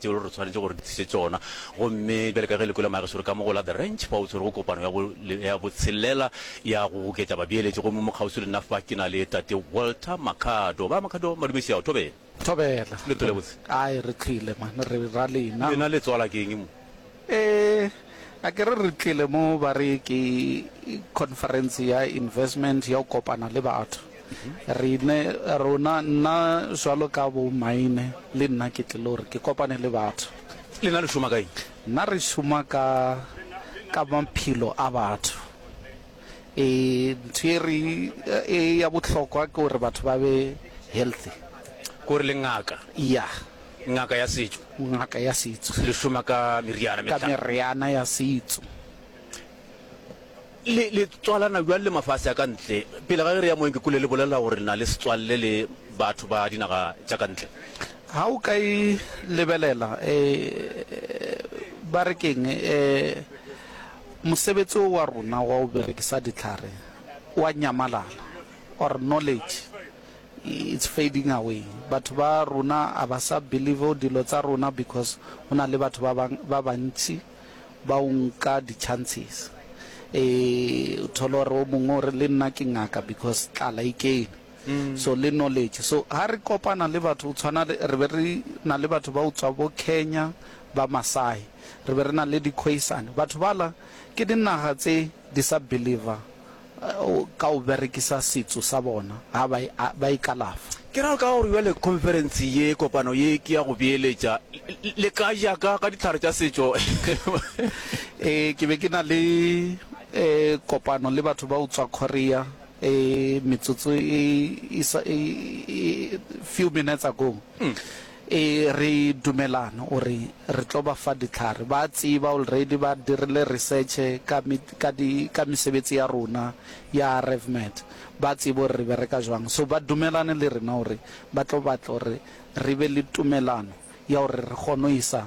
tšeo re tshwanetše gore di tliše tšona. Gomme bjale ka ge le kwele magesore ka mo go la The Ranch, fa o tshwere go kopano ya bo, ya botshelela ya go goketša babeeletši, gomme mo kgauswi le nna fa ke na le Tate Walter Makhado. Ba Makhado, Madumešiao, thobela. Thobela. Le tlile gabotse? Ai, re tlile, man, re ra lena. Lena le tswala ke eng mo? Ee, a ke re re tlile mo ba re ke conference ya investment ya go kopana le batho rene rona nna jalo ka bo maine le nna ke tlile gore ke kopane le batho le na le šoma kae nna re šoma ka ka maphelo a batho E, ntho e re e ya bohlokwa ke gore batho ba be healthy. Gore le ngaka? Ya. Ngaka ya setšo? Ngaka ya setšo. Le šoma ka meriana? Ka meriana ya setšo. Le, le tswalana bjang le mafase a ka ntle? Pele ga ge re ya moeng ke kule le bolela gore le na le setswalle le batho ba dinaga tša ka ntle. Ga o ka e lebelela, e, ba re keng, e, Mosebetsi wo wa rona wa go berekisa dihlare o a nyamalala. Or knowledge it's fading away. Batho ba rona a ba sa believe dilo tsa rona because go na le batho ba bang ba bantši ba o nka di chances. E thole gore o mongwe o re le nna ke ngaka because tlala e kene. so le knowledge so ha re kopana le batho o tshwana le re be re na le batho ba utswa bo Kenya ba Masai re be re na le di Khoisan batho bala ke dinaga tse di sa believer ka o berekisa setso sa bona ha ba ba ikalafa. Ke ra ka gore jwale conference ye kopano ye ke ya go beeletša le ka ja ka ka ditlhare tša setšo eh ke be ke na le eh kopano le batho ba utswa Korea e metsotso e isa e few minutes ago e re dumelana o re re tlo ba fa ditlhare ba tseba already ba dirile research ka ka di ka mesebetsi ya rona ya revmet ba tsebo re bereka jwang so ba dumelane le rena o re ba tlo batla re re be le tumelano ya o re re kgone isa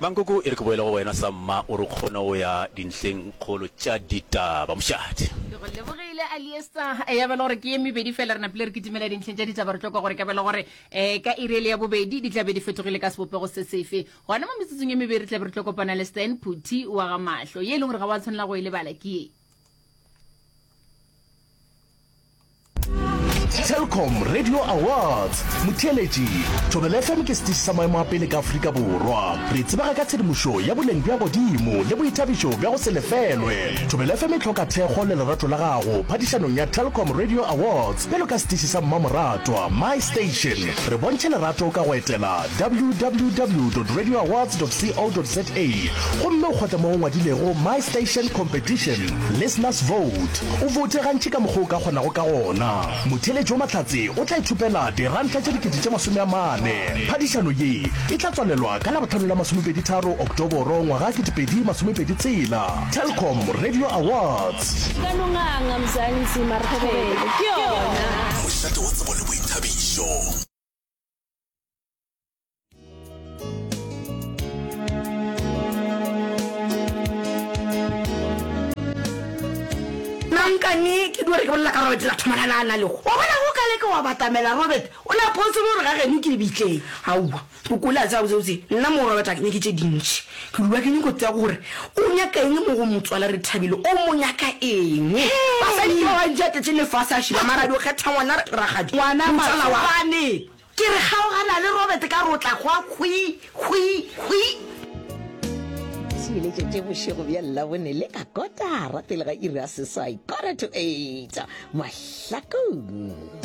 Mankoko e re ke boele go wena sa mma o re kgone go ya dintlheng kgolo tša ditaba. Mošate. Ke go lebogile Aliester. Ya ba e le gore ke ye mebedi fela re napile re kitimela dintlheng tša ditaba re tlo kwa gore ka ba e le gore um ka iri e le ya bobedi di tla be di fetogile ka sebopego se sefe. Gona mo metsotsong ye mebedi re tla be re tlo kopana le Stan Phuthi wa ga Mahlo. Ye e leng gore ga wa tshwanela go e lebala ke ye. Telkom Radio Awards motheeletši Thobela FM ke setiši sa maemo a pele ka Afrika Borwa. Re tsebega ka tshedimošo ya boleng bja godimo le boithabišo bja go se lefelwe. Thobela FM e hloka thekgo le lerato la gago phadišanong ya Telkom Radio Awards bjalo ka setiši sa mmamoratwa My Station. Re bontšhe lerato ka go etela www.radioawards.co.za gomme o kgotle mo go ngwadilego My Station Competition Listeners Vote. O voute gantši ka mokgwa o ka kgonago ka gona. Motheeletši wo mahlatse o tla ithopela diranta tše dikete tše masome a mane. Phadišano ye e tla tswalelwa ka Labohlano la masomepedi-tharo Oktoboro ngwaga ketepedi masomepedi tshela. Telkom Radio Awards. Ka no nganga Mzansi mara thobelo ke yona. Mošate wa tsebo le boithabišo. nankane ke di gore ke bolela ka robert la thomana na na lego wa bona go ka leke wa batamela robert o ne a phosolo gore ga geno ke lebitleng aowa o kole a tsaya botsebotse nna mo robert a ke nyake tse dintšhi ke lua ke nyako tsaya gore o nyaka eng mo go motswala re thabile o mo nyaka eng basadi ke ba bantši a tletse lefase a šiba marabi o kgetha ngwana ragadi ngwana matsala wa Ke re kgaogana le Robert ka re o tla hwa hwi, hwi, hwi. Se iletšetše bošego bja Labone le ka kotara pele ga iri ya seswai, quarter to eight, mahlakong.